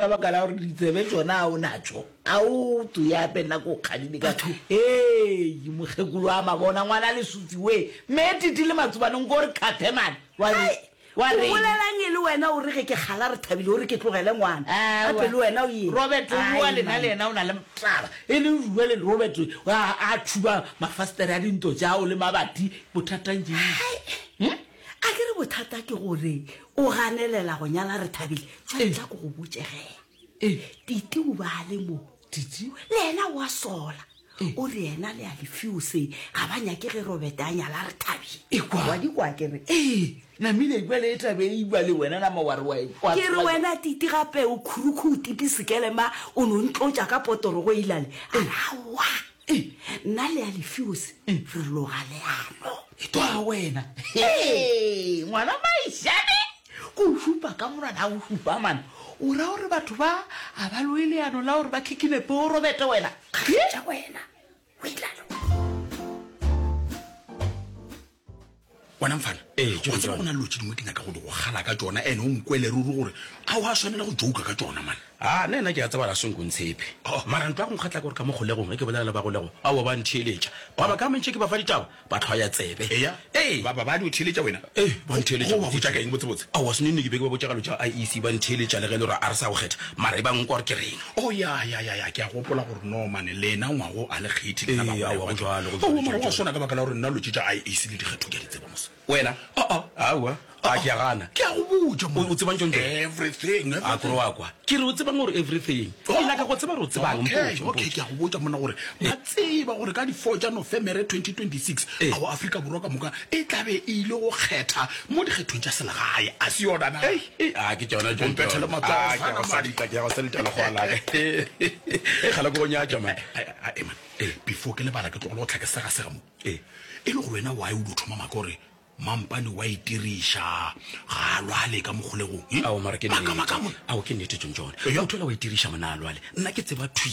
Ka baka la gore ditsebe tsona a o natšo a o to ya pe nna ko kgadile ka ee mokgekolo a mabona ngwana le sufi we me titi le matsobane nko re kgathe mane wa re wa re bolelang e le wena o re ge ke gala re thabile o re ke tlogele ngwana a pe le wena o ye Robert o bua lena le yena o na le mtlaba e le rua le Robert a a tshuba mafastere a dinto tša o le mabati bothatang jeng A ke re bothata ke gore o ganelela go nyala Rethabile? Tšwa ntla ko go botše ge. Titi o ba le mo. Titi. Le yena wa sola. O re yena le a lefiose ga ba nyake ge Robete a nyala Rethabile. Ekwa. Wa di kwa ke re. Ee. Namile ekwa le etabe e iba le wena nama wa re wa ekwa. Ke re wena Titi gape o khurukhu o tipi sekelema o no ntlotša ka potoro go ilale. A re aowa. nna le ya lefeose re loga leano e to a wena Ee, ngwana maishane ko o šupa ka monwana a o šupa mana o ra gore batho ba a ba loe leano la gore ba khikinepe o robete wena kgaetša wena o ilalo bona mfana ee ke tsena gona lotse dingwe ke nyaka go di go gala ka tsona ene o nkwele ruri gore a wa swanela go jouka ka tsona mane a nna ena ke ya tsebala senko ntshepe oh. mara ntlo ya go nkgatla gore ka mo golegong ke bolela le ba golego a wa ba ntheletša ba ba ka mentše ke ba fa ditaba ba tlhwa ya tsebe eya ee ba ba ba di theletša wena ee ba ntheletša ba botsa ka eng botse botse a wa sene ne ke be ke ba botsa galo tša IEC ba ntheletša le ge le ra a re sa go kgetha mara e ba nkwa gore ke reng Oh, ya, ya, ya, ya, ke a gopola gore no, mane, lena ngwago a le kgethi, lena Ee, bagolego aowa, ba go tšona. bjalo, go bjalo, Aowa, mara go a tšona, swana ka baka la gore nna lotše tša IAC le dikgetho ke a di tseba, mos. Wena? A-a. Aowa, a, Ah-ah. ke a gana. Ke a go botša, O- monna. o tsebang tšo ntšo? Everything, A kore everything. wa kwa. Ke re o tsebang gore everything. Ke nyaka go tseba gore o tsebang. Okay, Mpotše, okay, mpotše. ke a go botša monna gore ba tseba gore ka di-four tša nofemere 2026 Eh. ao afrika borwa ka moka e tlabe e ile go kgetha mo dikgethong tša selegae a se yona na Ei, Ei a ke tšona tšo mpethele matsogo a ke go salita ke ya go salita le gola ke e gala go nyatša man e man e before ke lebala ke tlo go tlhake sega sega mo e e le go wena why o do thoma maka gore mampane wa itiriša ga a lwale ka mogolego a o mara ke ne a o ke ne tšo tšona o thola wa itiriša mona a lwale nna ke tseba thwi